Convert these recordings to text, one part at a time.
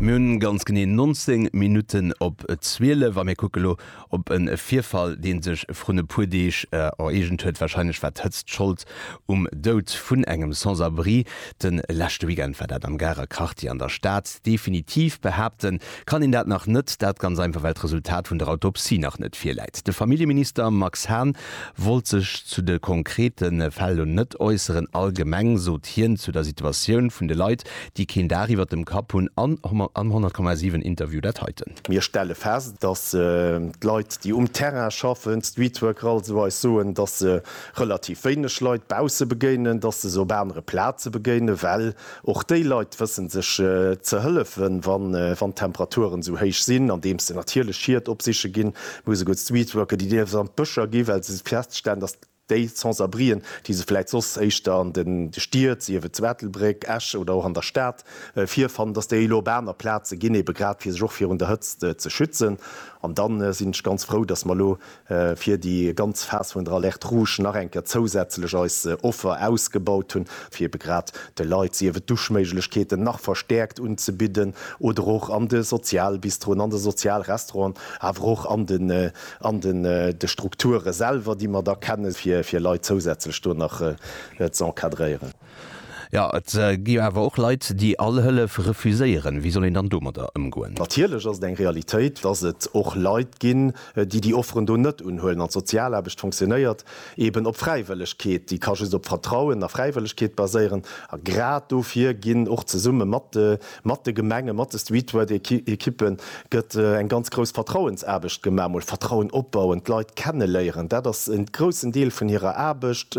Mir hunn ganz genee 19 Minutten op 12 a mir kucke lo op e Virfall deen sech vrun e puer Deeg ereegent huet. Wahrscheinlech war d'Hëtzt Schold um Doud vun engem Sans-abri. De leschte Weekend war dat am Garer Quartier an der Stad. Definitiv behaapten Kann een dat nach net? Dat ganz einfach, well d'Resultat vun der Autopsie nach net virläit. De Familljeminister Max Hahn wollt sech zu de konkrete Fäll elo net äusseren. Allgemeng sot hien zu der Situatioun vun de Leit, déi keen Daach iwwert dem Kapp hunn, am 100,7 Interview dat heiten. Mir stelle fest, datt d'Leit, déi um Terrain schaffen, d'Streetworker also, eis soen, datt se relativ wéineg Leit bausse begéinen, datt se se op anere Plaze begéinen, well Och déi Leit wëssen sech ze hëllefen, wann d'Temperaturen esou héich sinn, andeems se natierlech Schied opsiche ginn, Muse Good Street Worker, déi dierfs an d'Bëscher ginn, well se feststellen, datt déi Sans-abrien, déi se vläit soss éischter an de Stied, sief et zu Ettelbréck, Esch oder och an der Stad, virfannen, datt déi elo op aner Plaze ginn, ebe grad fir sech och virun der Hëtzt ze schützen. An da sinn ech ganz frou, datt mer elo fir déi ganz Phas vun der Alerte rouge nach eng Kéier zousätzlech eis Offer ausgebaut hunn, fir ebe grad de Leit, sief et Duschméiglechkeeten nach verstäerkt unzebidden oder och an de Sozialbistroen, an de Sozialrestauranten, awer och an den an den de Strukture selwer, déi mer da kennen, fir fir Leit zousätzlech do nach z'encadréieren. Jo, et gi jo awer och Leit, déi all Hëllef refuséieren. Wéi soll een dann domadder ëmgoen? Natierlech ass et eng Realitéit, dass et och Leit ginn, déi déi Offeren do net unhuelen. An d'Sozialaarbecht funktionéiert eeben op Fräiwëllegkeet. Déi ka just op Vertrauen a Fräiwëllegkeet baséieren. A grad dofir ginn och zesumme mat de mat de Gemengen, mat de Streetwork-Ekippen gëtt eng ganz grouss Vertrauensaarbecht gemaach. Mol Vertrauen opbauen, d'Leit kenneléieren, dat ass e groussen Deel vun hirer Aarbecht.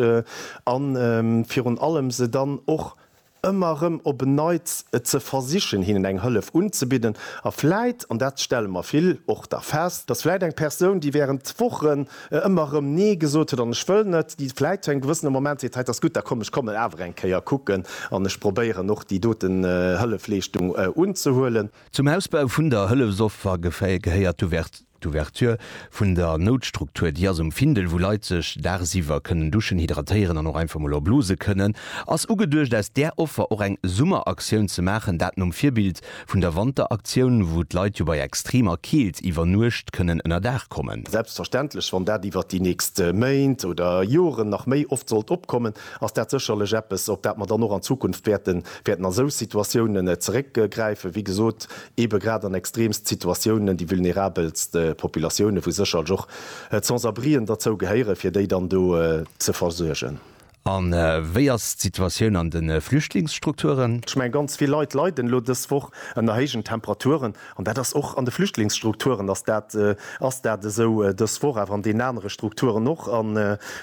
A virun allem se dann och ëmmer erëm op en Neits ze versichen, hinnen eng Hëllef unzebidden. A vläit, an dat stelle mer vill och da fest, dass vläit eng Persoun, déi während Wochen ëmmer erëm Nee gesot huet an Ech wëll net, déi vläit zu engem gewëssene Moment seet, Hei, 't ass gutt, da komm, ech kommen awer eng Kéier kucken an ech probéieren och déi dote Hëllefleeschtung unzehuelen. Zum Ausbau vun der Hëllefsoffer gehéiert d'Ouverture. D'Ouverture vun der Noutstruktur, déi ass um Findel, wou Leit sech daagsiwwer kënnen duschen, hydratéieren an och einfach mol er blose kënnen, ass ugeduecht aus där Offer och eng Summeraktioun ze maachen, dat nom Virbild vun der Wanteraktioun, wou d'Leit jo bei extremer Keelt iwwer Nuecht kënnen ënner Daach kommen. Selbstverständlech, wann dat iwwert déi nächst Méint oder Joren nach méi oft sollt opkommen, ass dat sécherlech eppes, op dat mer dann och an Zukunft wäerten a sou Situatiounen zeréckgräifen. Wéi gesot, eebe grad an extreemst Situatiounen, déi vulnerabelst Populatiounen, wou sécherlech och d'Sans-abrien derzou gehéieren, fir déi dann do ze versuergen. A wéi ass d'Situatioun an de Flüchtlingsstrukturen? Ech mengen, ganz vill Leit leiden elo dës Woch ënner héijen Temperaturen. An dat ass och an de Flüchtlingsstrukturen ass dat ass dat esou dës Woch, awer an deenen anere Strukturen och. An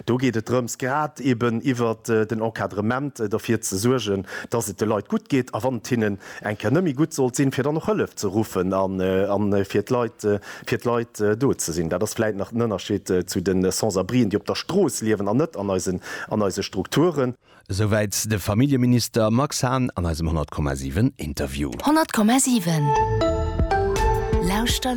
do geet et drëms, grad eeben iwwert den Encadrement, derfir ze suergen, dass et de Leit gutt geet a wann et hinnen eng Kéier net méi gutt sollt sinn, fir dann och Hëllef ze ruffen a fir d'Leit, fir d'Leit do ze sinn. Dat ass vläicht nach den Ënnerscheed zu de Sans-abrien, déi op der Strooss liewen an net an eisen, an eise Strukturen. Esouwäit de Familljeminister Max Hahn an eisem 100,7 Interview. 100,7 Lauschter!